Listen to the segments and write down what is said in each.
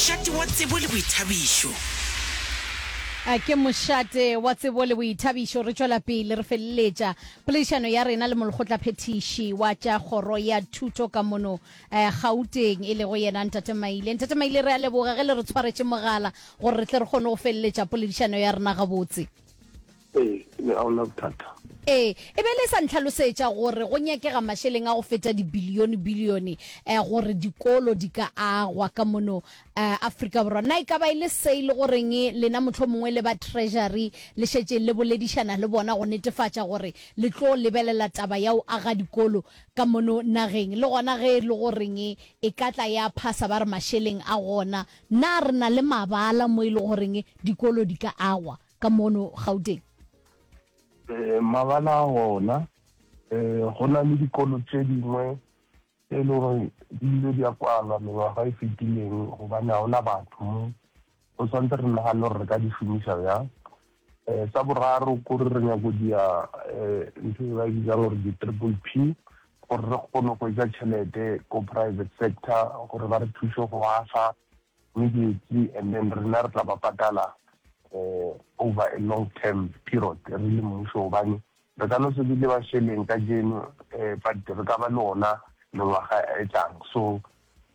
Mošate wa tsebo le boithabišo. Ke mošate wa tsebo le boithabišo re tšwela pele re feleletša poledišano ya rena le molekgotlaphethiši wa tša kgoro ya thuto ka mono Gauteng e lego yena Ntate Maile. Ntate Maile re a leboga ge le re tshwaretše mogala gore re tle re kgone go feleletša poledišano ya rena gabotse. Ee, mme ga o na bothata. Ee, e be e le sa ntlhalosetša gore go nyakega mašeleng a go feta dibilione-bilione eh, gore dikolo di ka agwa ka mono eh, Afrika Borwa. Na e ka ba e le se e le goreng lena mohlomongwe le ba Treasury le šetše le boledišana le bona go netefatša gore le tlo lebelela taba ya go aga dikolo ka mono nageng, le gona ge e le goreng e ka tla ya phasa ba re mašeleng a gona? Na re na le mabala mo e le goreng dikolo di ka agwa? ka mono Gauteng? Eh, mabala a gona um go na le dikolo tse dingwe tse e le gore di ile di a kwalwa mengwaga e fetileng gobane ga gona batho mo go tshwanetse re nagane gore re ka di šomiša bjang um sa boraro kore re nyako dia um ntho e ba e bitsang gore di-triple p gore re kgone go etsa tšhelete ko private sector gore ba re thuse go asa Re dutše and then rena re tla ba patala over a long term period re le mmušo gobane re ka no se be le mašeleng kajeno but re ka ba le ona mengwaga e tlang. So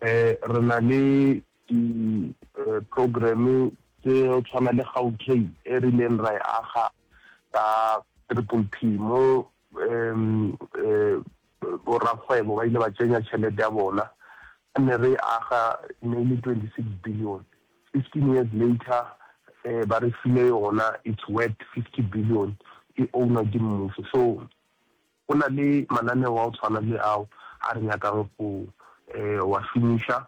re na le di program tse go tshwana le Gautrain e rileng ra e aga ka Triple P mo Borakgwebo ba ile ba tsenya tšhelete ya bona, ka ne re aga ne e le 26 billion, 15 years later ba re file yona it's worth 50 billion, e ownwa ke mmušo. So go na le mananeo a go tshwana le ao a re nyakang go wa šomiša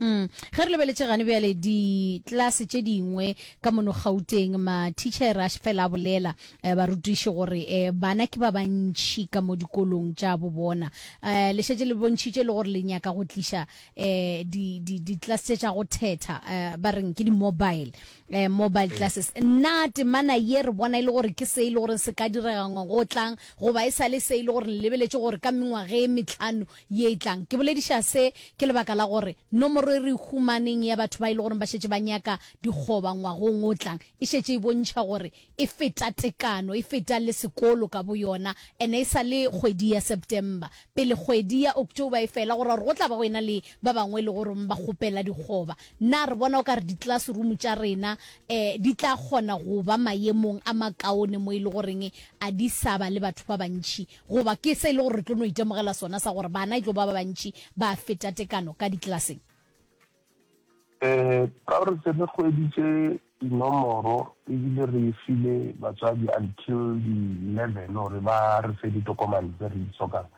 Mm. Ge re lebeletše gane bjale ditlase tše dingwe ka mono gauteng mathichera a fela a bolela eh, barutiši gore eh, bana ke ba bantšhi ka mo dikolong tša bo bona eh, le šetše le bontšhitše le gore le nyaka go tliša eh, ditlase tše tša go thetha eh, ba reng ke di-mobile eh, mobile eh. classes nna temana ye re bona e le gore ke se e le gore se ka direga ngwago o tlang goba e sa le se e le gore lebeletše gore ka mengwage e metlhano ye e tlang. Ke bolediša se ke lebaka la gore nomoro e re e humaneng ya batho ba e le gore ba šetše ba nyaka dikgoba ngwagong o tlang e šetše e bontšha gore e feta tekano, e feta le sekolo ka boyona, and-e e sa le kgwedi ya September, pele kgwedi ya October e fela, go ra gore go tla ba go ena le ba bangwe e le goreng ba kgopela dikgoba. Na re bona o ka re di-classroom tša rena um di tla kgona go ba mayemong a makaone mo e le goreng a di sa ba le batho ba bantši Goba ke se e le gore re tlo no itemogela sona sa gore bana e tlo ba ba bantši ba feta tekano ka diklaseng? Ee, ka re se re hweditše dinomoro e bile re e file batswadi until di eleven gore ba re fe ditokomane tse re di hlokang.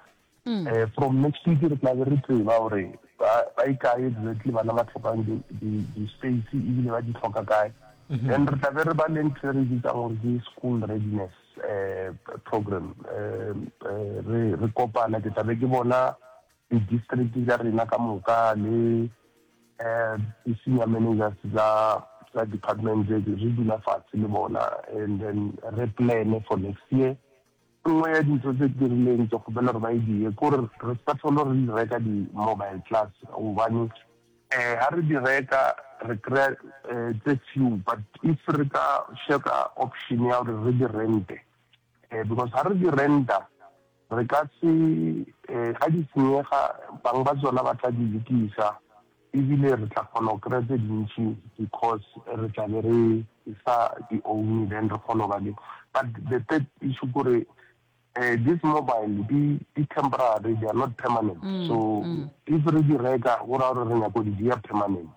Ee, from next week re tla be re tseba gore ba ba e kae exactly bana ba hlokang di di di-space e bile ba di hloka kae. Then re tla be re ba le ntho e re e bitsang gore ke school readiness. program re kopana ke tlabe ke bona di district tsa rena ka moka le di senior managers tsa tsa department re dula fatshe le bona and then re plan for next year nngwe ya dintho tse ke rileng ke kgopela gore ba e die kore re sa tlhole re reka di-mobile class gobane Eh ha re di reka re kry-a eh tse few but if re ka sheka option ya gore re di rente eh because ha re di renta re ka se eh ga di senyega bang ba tsona ba tla di lokisa ebile re tla kgona go kry-a tse dintši because re tla be re sa di own then re kgona go ba le but the third issue kore um this mobile di di temporary they are not permanent mm, so mm. if re di reka go raya gore re nyako di dia permanent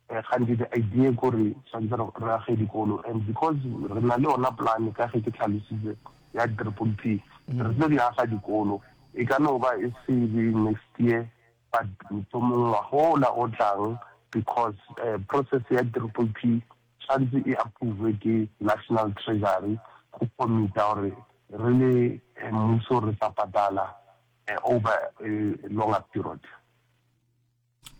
um gantsi the idea kore tshwanetse re age dikolo and because re na le ona plan ka ge ke tlhalositse ya triple p mm. re tlo di aga dikolo e ka no ba e se be next year but mohlomongwa gola o tlang because um process ya triple p tshwantse e approve ke National Treasury go commita gore re le mmuso re sa patala over a longer period.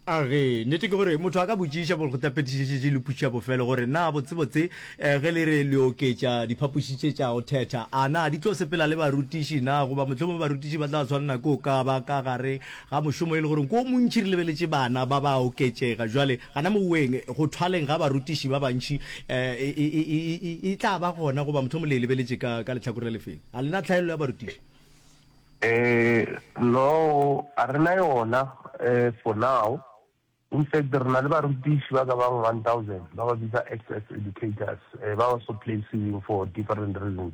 A re, Nnete ke gore motho a ka botšiša bo go tapetišetše le pušo ya bofelo gore na botsebotse ge le re le oketša diphapoši tše tša go thetha a na di tlo sepela le barutiši na goba mohlomongwe barutiši ba tla tshwanela ke go ka ba ka gare ga mošomo e le gore ke o montši re lebeletše bana ba ba oketšega jwale Gana moweng, go thwaleng ga barutiši ba bantši e, e, e, e, e tla ba gona, goba motho mo le e lebeletše ka, ka lehlakore la lefeng? Ga le na tlhaello ya barutiši? Ee, no, a re na yona, e, for now. In fact, re na le barutiši ba ka bang one thousand, ba ba bitsa ex-ex educators, e, ba ba so place-iweng for different reasons.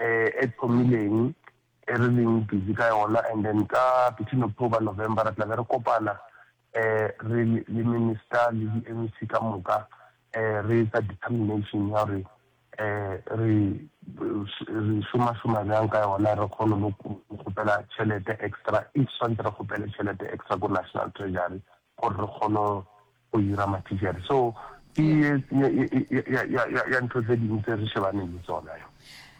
e thomileng e re leng busy ka yona and then ka between October, November re tla be re kopana re le minister le di MEC ka moka re etsa determination ya gore re re šoma šoma bjang ka yona re kgone le go kgopela tšhelete extra if swantse re kgopele tšhelete extra ko National Treasury gore re kgone go ira ma t-shirt so ke ye ya ntho tse dingwe tse re shebaneng le tsona yo.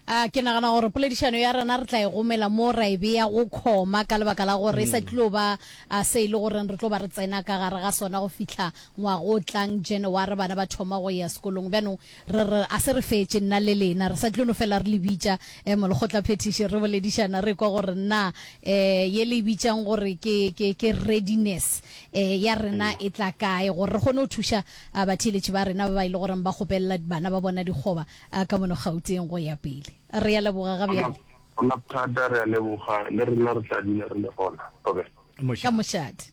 A ke nagana gore poledišano ya rena re tla e gomela mo ra e beya go khoma ka lebaka la gore e sa tlilo ba a se e le goreng re tlo ba re tsena ka gare ga sona go fihla ngwaga o tlang January bana ba thoma go ya sekolong bjanong Re re, A se re fetše, nna le lena. Re sa tlo no fela re le bitša, eh, molekgotlaphethiši, re boledišana, re ekwa gore na, eh, ye le e bitšang gore ke, ke, ke readiness, eh, ya rena e tla kae, gore re kgone go thuša, ah, batheeletši ba rena ba ba e le goreng ba kgopelela bana ba bona dikgoba, ah, ka mono Gauteng go ya pele. Re a leboga ga bjale. Gona thata, re a leboga. Le rena re tla dula re le gona. Robert. Ka mošate.